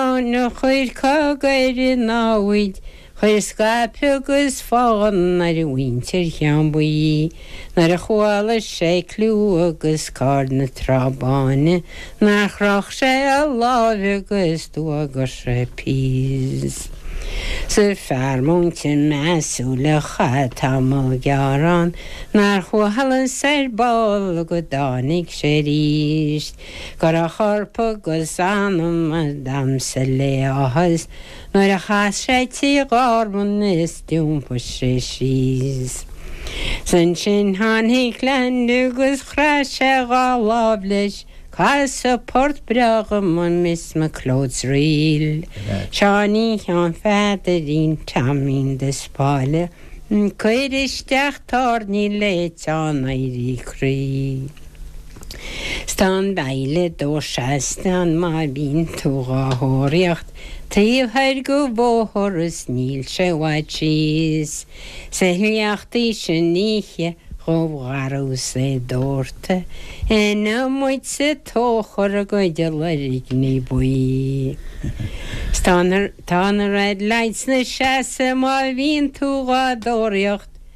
Ann a chuir cogadh ar a námhaid, chuir scaipeadh agus fán ar mhuintir Cheann Buí, nuair a chuala sé cliú agus cáil na Trá Báine, nár chroch sé a láimh agus d'fhuagair sé Peace. 'S an fear múinte measúil a chaith tamall gearr ann, nár chuala aon saor ball go dtáinig sé arís. Chuir a chorp agus a anam ag damhsa le háthas nuair a chas sé tigh Ghormáin is d'iompaigh sé síos. 'S ansin tháinig Leainde agus chraith sé dhá láimh leis, casadh port breá go maith Miss McLeod's Reel, Seáinín Sheáin Pheadairín Taimín de Spáille, ag cur isteach tairní le teann éirí croí. Sna Baill Dúchais sna má bhíonn tú dhá thóraíocht taobh thoir go bhóthar is níl sé i bhfad síos sa shliocht í sin oíche dhubh dhorcha is é ag dórtadh ina muid sa tóchar a gcuid a loirg ní buí. Tá na Red Lights ina seasamh má bhíonn tú dhá dtóraíocht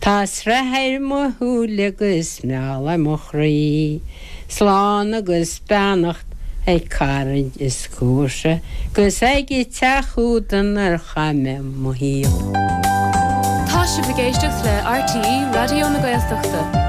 Tá sraith ar mo shúile agus meall ar mo chroí, Slán agus beannacht ag caraid is comharsa, 'Gus ag an teach úd inar chaith mé mo shaol. Tá sibh ag éisteacht le RTÉ Raidió na Gaeltachta.